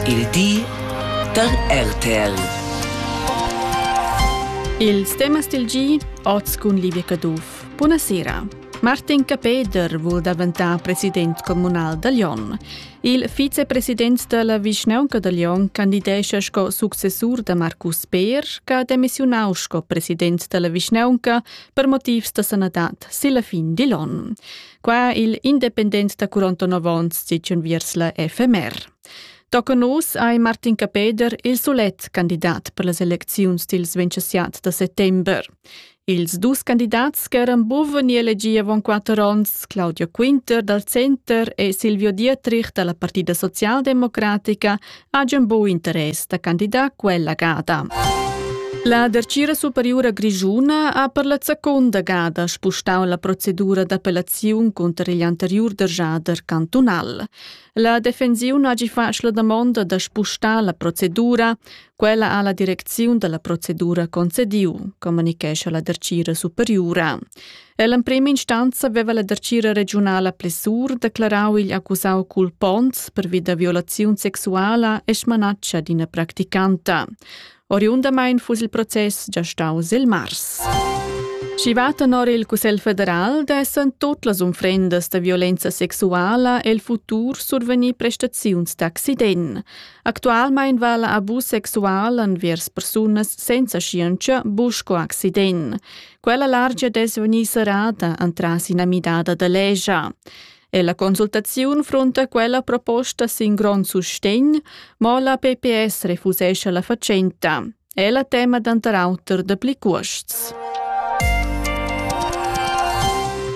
Il di da RTL. Ils temas del gi, oz cun Livia Caduff. Buonasera. Martin Capeder vul daventar president comunal da Lyon. Il vicepresident della Vischnaunca da Lyon candidescha sco successur da Marcus Beer, che ha demissionau sco president della Vischnaunca per motivs da sanadad silla fin di Lyon. Qua il independent da 49 onns sitschun viers la FMR. Toca nus hai Martin Capeder il solet candidat per las elecziuns dils 27 da settember. Ils dus candidats ch'eran buven ni elegi avon quatter onns, Claudio Quinter dal Center e Silvio Dietrich dalla Partida Socialdemocratica, hajan buc interess da candidar quella gada. La Dertgira Superiura Grischuna ha per la seconda gada spustau la procedura d'appellaziun cunter igl anteriur derjader cantunal. La defensiun hagi fatg la damonda da spustar la procedura. Quella ha la direcziun dalla procedura concediu, communichescha la Dertgira Superiura. Ell'emprema instanza veva la dartgira regiunala Plessur declarau igl accusau culponts pervi da violaziun sexuala e smanatscha d'ina practicanta. Oriundamain fuss il process già staus il mars. Schi va tenor il Cussegl federal dessen tot las unfrendas da violenza sexuala el futur survenir prestaziuns d'accident. Actualmein va la abus sexual envers persunas senza scienza busco accident. Quella largia dess vegnir serrada entras ina midada da legia. E la consultaziun frunta quella proposta sin grond sustegn, mo la PPS refusesce la facenta. È la tema d'antar auter da pli cuosts.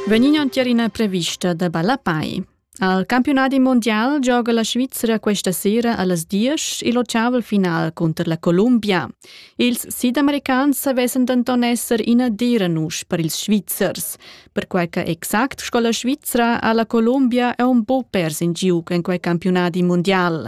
Venino tier ina prevista da Balapai. Al campiunadi mondial gioga la Svizra questa sera allas diesch il otgavel final cunter la Columbia. Ils sidamericans vessen denton esser ina dera nusch per ils Svizzers, perquei che exact sco la Svizra ha la Columbia è un po pers in giug en quei campiunadi mondial.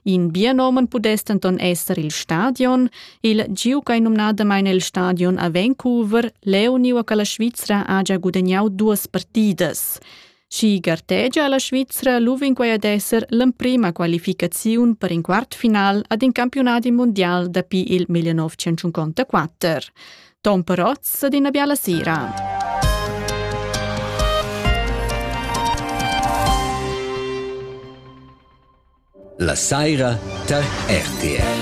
In bienomen pudess denton esser il stadion, il giug ei numnadamein il stadion a Vancouver, leu niu che la Svizra ha già gudagnau duas partidas. Schi gartegia la Svizra luvinquai ad esser l'emprima qualificaziun per in quartfinal ad in campiunadi mundial dapi il 1954. Tom Perotz ad ina biala sera. La saira tar RTR.